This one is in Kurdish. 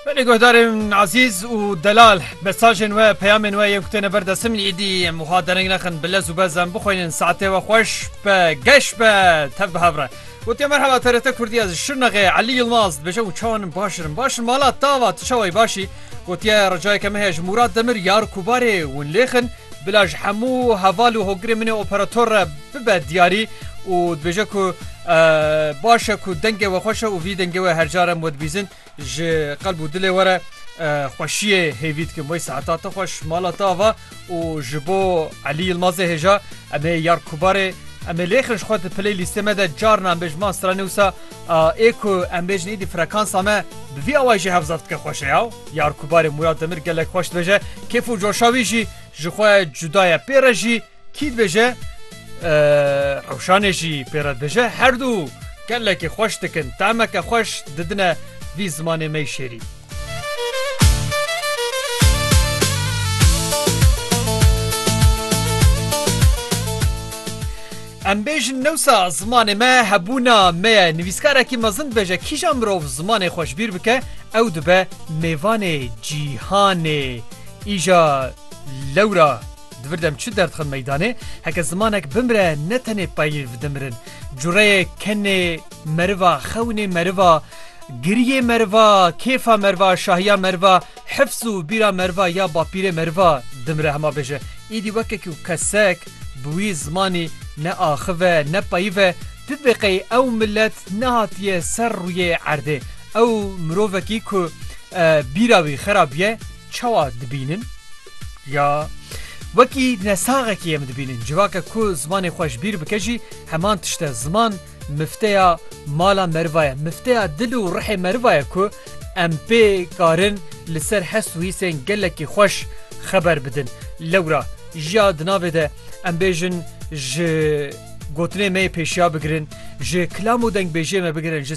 Belê guhdarên ezîz û delal mesajên we peyamên we yên ku têne ber destin min îdî em wiha dereng nexin bi lez û bez em bixwînin saetê we xweş be geş be tev bi hev re Gotiye merheba TRT Kurdî ez Şirnexê Elî Yilmaz dibêje û çawa nin baş in baş in mala tava tu çawa yî baş î Gotiye ricayeke min heye ji Mûrat Demir yar Kubarê win lêxin bila ji hemû heval û hogirê min ê operator re bibe diyarî û dibêje ku baş e ku dengê we xweş e û vî dengê we her car em wedibîzin ji qelb û dilê were xweşiyê hêvî dikim wey seheta te xweş mala te ava û ji bo Elî Yilmazê hêja em ê yar kubarê em ê lêxin ji xwe di piley lîstê me de carna em bêjin man strane wisa ê ku em bêjin êdî frekansa me bi vî awayî jî hevzaf dike xweş e yaw yar kubarê Murad Demir gelek xweş dibêje kêf û coşa wî jî ji xwe cuda ye pê re jî Kî dibêje rewşanê jî pê re dije herdû gelekî xweş dikin temeke xweş didine vî zimanê me şêrîn. Em bêjin newsa zimanê me hebûna me ye nivîskarekî mezin dibêje kîja mirov zimanê xweşbîr bike ew dibe mêvanê cîhanê îja lewra Divir dem çi derdxin meydanê, heke zimanek bimre ne tenê peyv dimirin. Cureyê kenê meriva, xewnê meriva, giriyê meriva, kêfa meriva, şahiya meriva, hifz û bîra meriva ya bapîrê meriva dimire hema bêje. Îdî weke ku kesek bi wî zimanî ne axif e, ne peyv e, tu diqey ew milet nehatiye ser rûyê erdê. Ew mirovekî ku bîra wî xera bûye, Çawa dibînin? Ya wekî nesaxekî em dibînin. Civake ku zimanê xwe ji bîr bike jî heman tişt e. Ziman mifteya mala meriva ye. Mifteya dil û rihê meriva ye ku em pê karin li ser hest û hîsên gelekî xweş xeber bidin. Lewra jiya di navê de em bêjin ji gotinê me yê pêşiya bigirin, ji kilam û dengbêjiyê me bigirin, ji